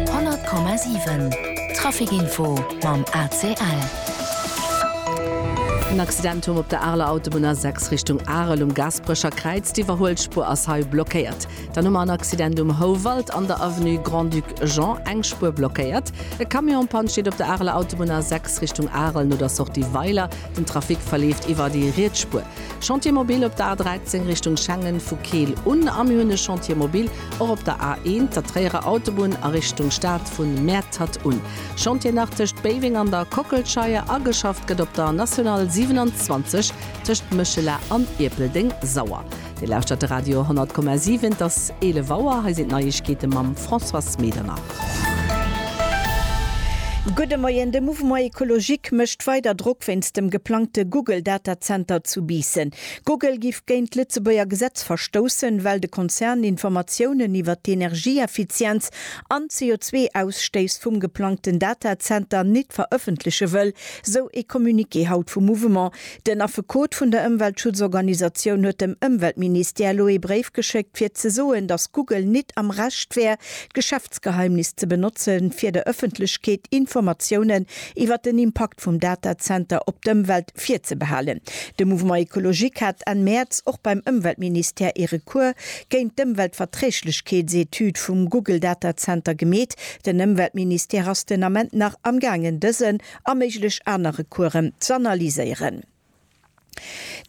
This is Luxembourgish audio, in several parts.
100,7 Traficinfo mam ACL. En Accident humm op der Areler Autobunn A6 Richtung Arel um Gasperecher Kräiz. D'Iwwerhuelspuer ass hei blockéiert. Dann hu mer en Accident um Houwald an der Avenue Grand-Duc Jean, eng Spuer blockéiert. E Camion en Panne steet op der Areler Autobunn A6 Richtung Arel no der Sortie Weiler. Den Trafic verleeft iwwer déi riets Spuer. Chantier mobile op der A13 Richtung Schengen vu Keel un a mir hunn e Chantier mobile Och op der A1, der Tréierer Autobunn a Richtung Stad vu Mäertert un. Chantier nach tëscht Béiweng an der Kockelscheier a geschafft gëtt op der National 27 tëscht Méchela an Ierpeldeng Sauer. Dir lauschtert de Radio 100,7. Et ass 11 Auer. Hei sinn d'Neiegkeete mam Françoise Medernach. Gudde Moien. De Mouvement Ecologique mécht weider Drock wéinst dem geplangte Google Data Center zu Biissen. Google giff géint d'Lëtzebuerger Gesetz verstoussen, well de Konzern Informatiounen iwwer d'Energieeffizienz an d'CO2-Ausstéiss vum geplangten Datazenter nit verëffentleche wëll, sou ee Communiqué haut vum Mouvement. Den Affekot vun der Ëmweltschutzorganisatioun huet dem Ëmweltministère elo ee Bréif geschéckt, fir ze soen, datt Google nit am Recht wär, d'Geschäftsgeheimnis ze benotzen, fir der Ëffentlechkeet Informatiounen iwwer den Impakt vum Datazenter op d'Ëmwelt Virzebehalen. De Mouvement Ecologique hat Enn Mäerz och beim Ëmweltministère ee Recours géint d'Ëmweltverträglechkeetsetüd vum Google Data Center gemeet. Den Ëmweltministère ass den Ament nach am gaangen dësen a méiglech aner Recoursen z'analyséieren.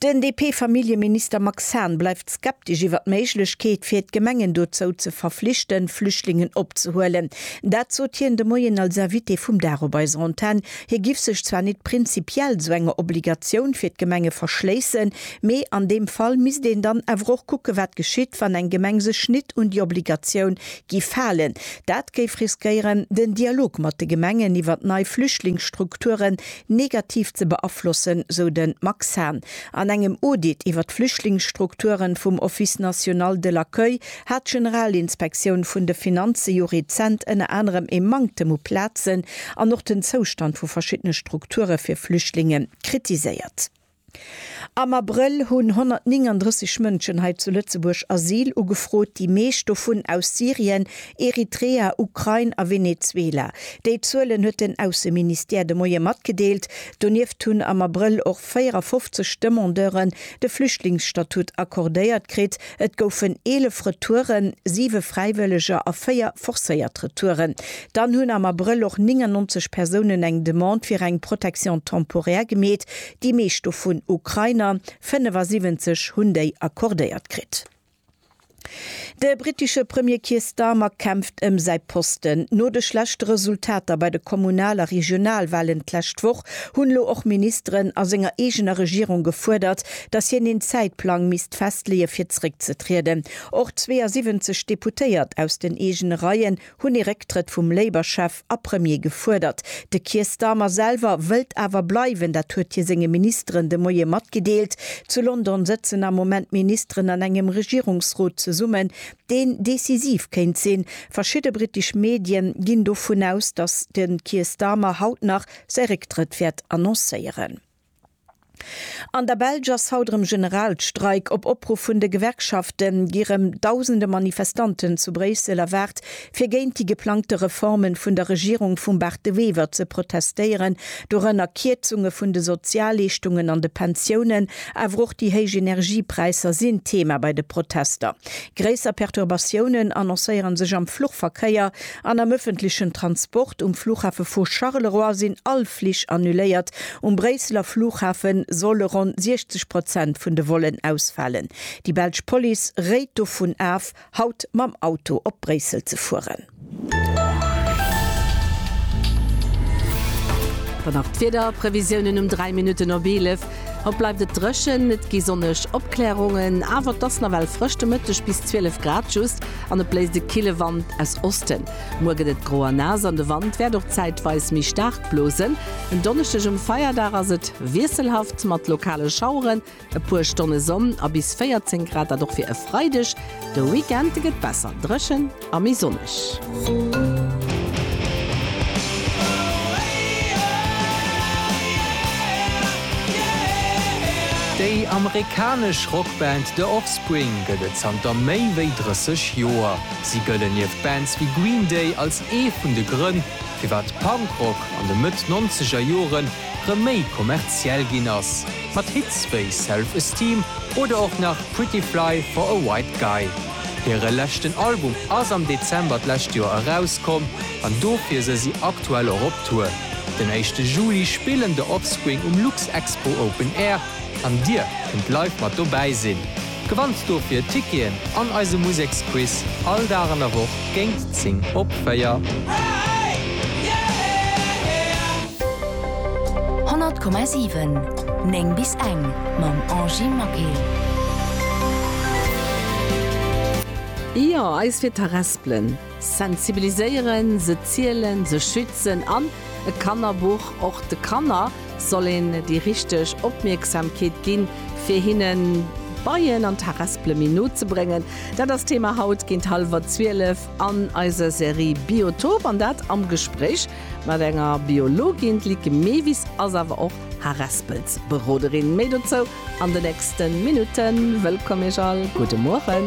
Den DP-Familljeminister Max Hahn bleift skeptesch iwwer d'Méiglechkeet, fir d'Gemengen dozou ze verflichten, Flüchtlingen opzehuelen. Dat sot hien de Moien als Invité vum Dag op eiser Antenn. Hie giff sech zwar nit prinzipiell esou enger Obligatioun fir d'Gemenge verschléissen, mee an deem Fall misst een dann awer och kucke wat geschitt, wann eng Gemeng sech nit un déi Obligatioun giff halen. Dat géif riskéieren den Dialog mat de Gemengen iwwert nei Flüchtlingsstrukturen negativ ze beaflossen, sou de Max Hahn. An engem Audit iwwert d'Flüchtlingsstrukturen vum Office national de l'accueil hat d'Generalinspektioun vun de Finanze jo rezent ënner anerem ee Manktem u Plazen an och den Zoustand vu verschiddene Strukture fir Flüchtlinge kritiséiert. Am Abrëll hunn 139 Mënschen hei zu Lëtzebuerg Asyl ugefrot, déi meescht dovun aus Syrien, Eritrea, Ukrain a Venezuela. Déi Zuelen huet den Ausseministère de Moie matgedeelt. Donieft hunn am Abrëll och 54 Demandeuren de Flüchtlingsstatut accordéiert kritt. Et goufen 11 Retouren, siwe Fräiwëlleger a véier forcéiert Retouren. Dann hunn am Abrëll och 99 Persounen eng Demande fir eng Protection temporaire gemeet, déi meescht dovun Ukrainer, 75 hunn déi accordéiert kritt. De brittesche Premier Keir Starmer kämpft ëm säi Posten. No de schlechte Resultater bei de Kommunal a Regionalwalen d'lescht Woch hunn elo och Ministeren a senger eegener Regierung gefuerdert, datt hien een Zäitplang misst Recht festleeë fir zeréckzetrieden. Och 72 Deputéiert aus den eegene Reien hunn ee Récktrëtt vum Labour-Chef a Premier gefuerdert. De Keir Starmer selwer wëllt awer bleiwen, dat huet hie senge Ministeren de Moie matgedeelt. Zu London sëtzen am Moment d'Ministeren an engem Regierungsrot zesummen, deen decisiv kéint sinn. Verschidde brittesch Medien ginn dovun aus, datt de Keir Starmer haut nach säi Récktrëtt wäert annoncéieren. An der Belsch ass haut erëm Generalstreik. Op Opruff vun de Gewerkschafte gi rëm dausende Manifestanten zu Bréissel erwaart, fir géint déi geplangte Reforme vun der Regierung vum Bart De Wever ze protestéieren, dorënner Kierzunge vun de Sozialleeschtungen an de Pensiounen. Awer och déi héich Energiepräisser sinn Thema bei de Protester. Gréisser Perturbatiounen annoncéiere sech am Fluchverkéier an am ëffentlechen Transport. Um Flughafe vu Charleroi sinn all Flich annuléiert. Um Bréisseler Flughafe solle ronn 60 Prozent vun de Vollen ausfalen. Déi belsch Police réit dovun af, haut mam Auto op Bréissel ze fueren. Dann nach d'Wiederprevisiounen um 3 Minutten op 11. Haut bleift et dréchen, et gi sonneg Opklärungen, awer et ass nawell frësch, de Mëtteg bis 12 Grad just, an et bléist e kille Wand aus Osten. Muer gëtt et gro a naass an de Wand wäert och zäitweis méi staark blosen. En Donneschdeg um Feierdag ass et wiesselhaft mat lokale Schaueren. E puer Stonne Sonn a bis 14 Grad, dat och fir e Freideg. De Weekend gëtt besser dréchen a méi sonneg. Déi amerikanesch Rockband The Offspring gëtt et zanter méi wéi 30 Joer. Si gëllen nieft Bands wéi Green Day als ee vun de Grënn, firwat Punkrock an de Mëtt nonzeger Jore rëm méi kommerziell ginn ass, mat Hits wéi Self Esteem oder och nach Pretty Fly for a White Guy. Hire leschten Album ass am Dezember d'lescht Joer erauskomm an dofir se si aktuell och op Tour. Den éischte Juli spillen The Offspring um Luxexpo Open Air an dir kënnt live mat dobäi sinn. Gewannt dofir Ticketen an eise Museksquiz all Dag an der Woch géint 10 op 4. Honnert Komma siwen, néng bis eng, mam Angie Maquet. Jo, eis fir d'Harespelen. Sensibiliséieren, se zielen, se schützen an, e Kannerbuch, och de Kanner soll een déi richteg Opmierksamkeet ginn, fir hinne Beien an Taraspele méi no ze bréngen. Dat ass d'Thema haut géint hallwer zwielef an eiser Serie Biotop an dat am Gespréich mat enger Biologin. D'Lieke Mewis ass awer och Haraspelsberoderin. Méi dozou an de nächste Minutten. Wëllkomm Iech all, gudde Mueren.